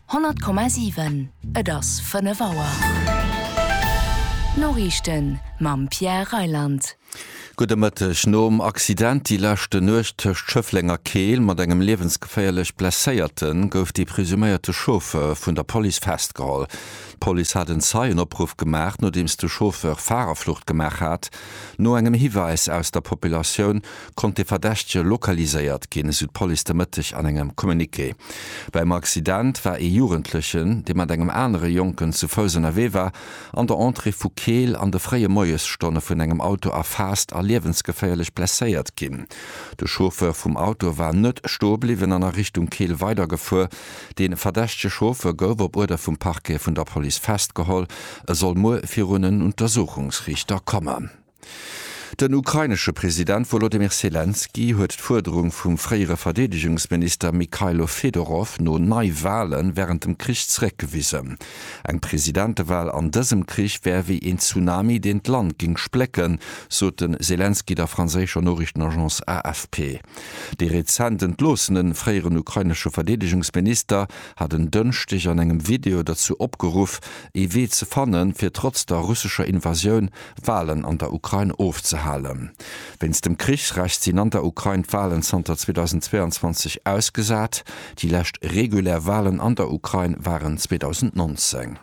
100,7 Et ass 5 Auer. D'Noriichten mam Pierre Reyland. Gudde Mëtteg. Nom Accident déi leschte Nuecht tëscht Schëffleng a Keel mat engem liewensgeféierlech Blesséierte gouf de presuméierte Chauffeur vun der Police festgeholl. D'Police hat en Zeienopruff gemaach, nodeems de Chauffeur Farerflucht gemaach hat. No engem Hiwäis aus der Populatioun konnt de Verdächtege lokaliséiert ginn, esou d'Police de Mëtteg an engem Communiqué. Beim Accident war ee Jugendlechen, dee mat engem anere Jonken zu Fouss ënnerwee war, an der Entrée vu Keel an de fréie Moiesstonne vun engem Auto erfaasst a liewensgeféierlech blesséiert ginn. De Chauffeur vum Auto war net stoe bliwwen an a Richtung Keel weidergefuer. De verdächtege Chauffeur gouf op Uerder vum Parquet vun der Police festgeholl. E soll muer virun en Untersuchungsriichter kommen. Den ukrainesche President Wolodymyr Selenskyj huet d'Fuerderung vum fréiere Verdeedegungsminister Mykhailo Fedorov no Neiwahle wärend dem Krich zeréckgewisen. Eng Presidentewahl an dësem Krich wär wéi een Tsunami, deen d'Land géing splécken, sot de Selenskyj der franséischer Noriichtenagence AFP. Dee rezent entloossene fréieren ukrainesche Verdeedegungsminister hat en Dënschdeg an engem Video dozou opgeruff, ee Wee ze fannen, fir trotz der russescher Invasioun Walen an der Ukrain ofzehalen. Wéinst dem Krichsrecht sinn an der Ukrain d'Walen zanter 2022 ausgesat. Déi lescht regulär Walen an der Ukrain waren 2019.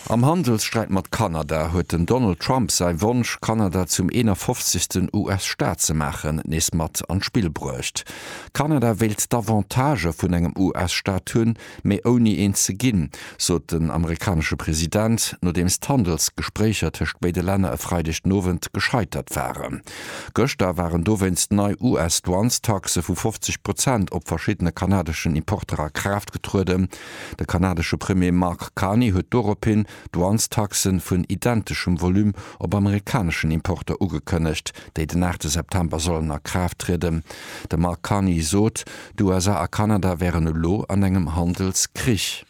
Am Handelssträit mat Kanada huet den Donald Trump säi Wonsch, Kanada zum 51. US-Staat ze maachen, nees mat an d'Spill bruecht. Kanada wéilt d'Avantagë vun engem US-Staat hunn, mee ouni eent ze ginn, sot den amerikanesche President, nodeems d'Handelsgespréicher tëscht béide Länner e Freideg den Owend gescheitert waren. Gëschter waren dowéinst nei US-Douanestaxe vu 50 Prozent op verschiddene kanadeschen Importer a Kraaft getrueden. De kanadesche Premier Mark Carney huet dorophin Douanestaxe vun identeschem Volume op amerikaneschen Importer ugekënnegt, déi den 8 September sollen a Kraaft trieden. De Mark Carney sot, D'USA a Kanada wären elo an engem Handelskrich.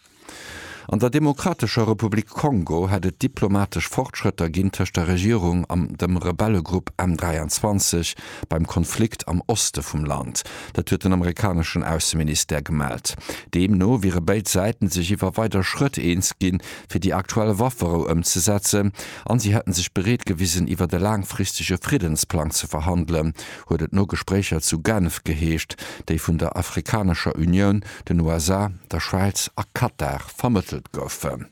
An der Demokratescher Republik Kongo hätt et diplomatesch Fortschrëtter ginn tëscht der Regierung an dem Rebellegrupp M23 beim Konflikt am Oste vum Land. Dat huet den amerikaneschen Ausseministère gemellt. Deemno wiere béid Säiten sech iwwer weider Schrëtt eens ginn, fir déi aktuell Wafferou ëmzesetzen, an si hätten sech bereet gewisen, iwwer e laangfristege Friddensplang ze verhandelen, huet et no Gespréicher zu Genf geheescht, déi vun der Afrikanescher Unioun, den USA, der Schwäiz a Katar vermëttelt goufen.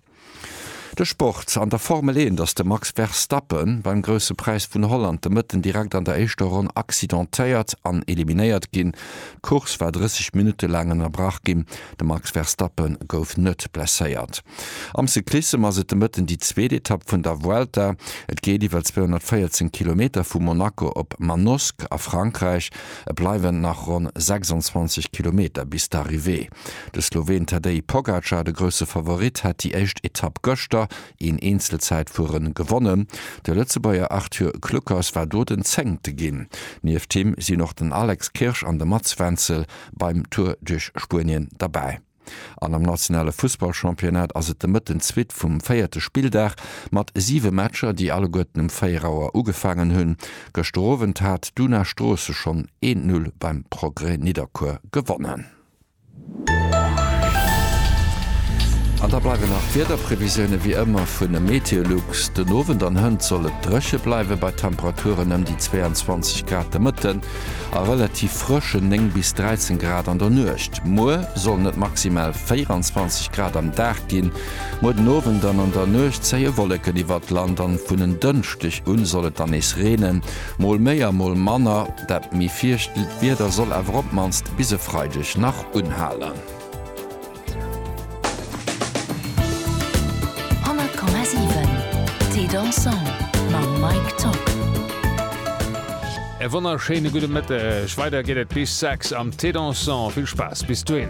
De Sport, An der Formel 1 ass de Max Verstappe beim Grousse Präis vun Holland de Mëtten direkt an der éischter Ronn accidentéiert an eliminéiert ginn. D'Course war 30 Minutte laang ënnerbrach ginn. De Max Verstappe gouf net blesséiert. Am Cyclissem ass et de Mëtten déi zweet Etapp vun der Vuelta. Et geet iwwer 214 Kilometer vu Monaco op Manosque a Frankräich. Et bleiwen nach ronn 26 Kilometer bis d'Arrivée. De Sloween Tadej Pogacar, de grousse Favorit, hat déi éischt Etapp gëschter een Eenzelzäitfuere gewonnen. De Lëtzebuerger Arthur Kluckers war do den Zéngte ginn. Nieft him sinn och den Alex Kirsch an de Mats Wenzel beim Tour duerch Spuenien derbäi. An am nationale Fussballchampionnat ass et de Mëtten d'Suite vum véierte Spilldag mat siwe Matcher, déi alleguerten um 4 Auer ugefaangen hunn. Gëschter Owend hat d'Una Stroosse schonn een Null beim Progrès Nidderkuer gewonnen. An da bleiwen nach d'Wiederprevisioune wéi ëmmer vun e Meteolux. Den Owend an hënt soll et dréche bleiwe bei Temperaturen ëm déi 22 Grad. De Mëtten A relativ frëschen 9 bis 13 Grad an der Nuecht. Muer sollen et maximal 24 Grad am Dag ginn. Muer den Owend an an der Nuecht zéie Wolleken iwwert d'Land an vun en Dënschdeg un soll et dann nees reenen, mol méi a mol manner. Dat méi fiichtelt Wieder soll awer op d'mannst bis e Freideg nach unhalen. Thé dansant mam Mike Tock. E wonnerschéine gudde Mëtteg. Weider geet et bis 6 am Thé dansant. Vill Spaass bis dohin.